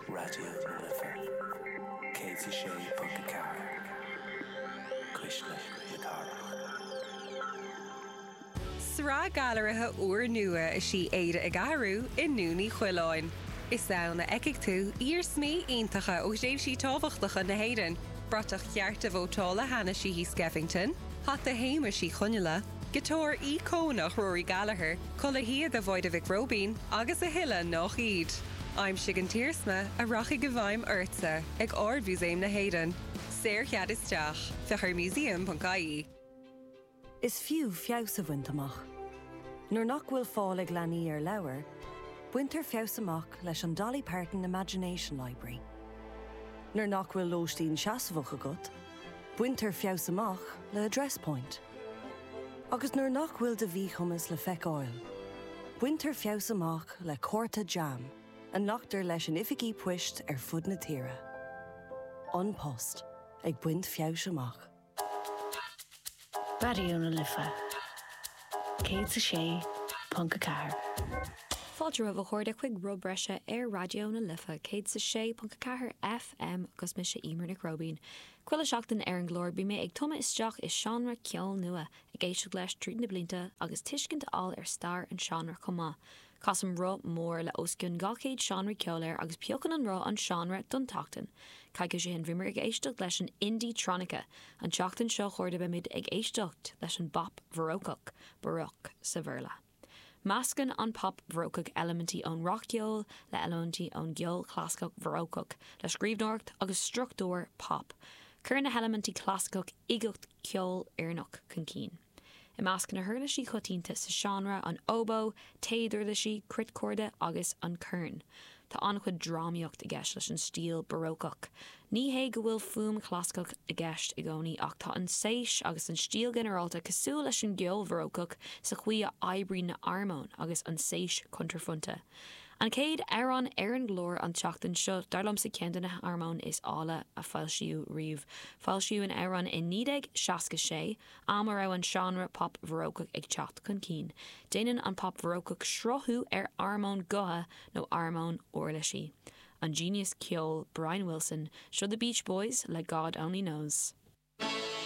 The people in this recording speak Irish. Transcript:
Raidió na Life 106.4, cuisle na cathrach. Sraith gailearaithe úrnua is í Éire ag Athrú i nDún Uí Choileáin. Is ann a fheicfidh tú iarsmaí iontacha ó thréimhsí tábhachtacha na hÉireann, bratach chearta vótála Hanna Sheehy Skeffington, hata Shéamais Uí Chonghaile, Giotár íocónach Rory Gallagher, culaith shíoda Mháire Mhic Róibín agus a thuilleadh nách iad. Aimsigh an t-iarsma a rachaidh i bhfeidhm ortsa ag Ard-Mhúsaem na hÉireann. Saorchead isteach. Féach ar museum.ie. Is fiú feabhas a bhaint amach. Nuair nach bhfuil fáil ag leanaí ar leabhair, baintear feabhas amach leis an Dolly Parton Imagination Library. Nuair nach bhfuil lóistín seasmhach agat, baintear feabhas amach le Address Point. Agus nuair nach bhfuil do mhíchumas le feiceáil, baintear feabhas amach le cárta JAM a nglactar leis in oifigí poist ar fud na tíre. An Post ag baint feabhais amach. Raidió na Life 106.4. Fáilte romhaibh a chairde chuig Rud Breise ar Raidió na Life 106.4 FM agus mise Emer Nic Róibín. Chuile sheachtain ar an gclár bíonn mé ag tumadh isteach i seánra ceoil nua, ag éisteacht leis tríd na blianta agus tuiscint a fháil ar stair an seánra chomh maith. Casaim roth mór le os cionn 200 seánra ceoil air agus piocann an roth an seánra don tseachtain. Coicís ó shin bhíomar ag éisteacht leis an indie-tronica, an tseachtain seo a chairde beimid ag éisteacht leis an bpop Bharócach, Baroque sa Bhéarla. Meascann an pop bharócach eilimintí ón rac-cheol le eilimintí ón gceol chlasaiceach bharócach le scríbhneoireacht agus struchtúr pop. Cuireann na heilimintí clasaiceach uigeacht ceolfhoirneach chun cinn. I measc na huirlisí coitianta sa seánra an óbó, téaduirlisí, cruitchorda agus an corn. Tá an-chuid drámaíocht i gceist leis an stíl barócach. Ní hé go bhfuil fuaim chlasaiceach i gceist i gcónaí ach tá an tséis agus an stíl ghinearálta cosúil leis an gceol bharócach sa chaoi a oibríonn na harmóin agus an tséis cuntraphointe. An chéad amhrán ar an gclár an tseachtain seo dar liomsa ceann de na harmóin is áille a foilsíodh riamh. Foilsíodh an amhrán i 1966. am a raibh an seánra pop bharócach ag teacht chun cinn, déanann an pop bharócach srathú ar armóin gutha nó armóin uirlisí. An genius ceoil Brian Wilson, seo The Beach Boys le God Only Knows.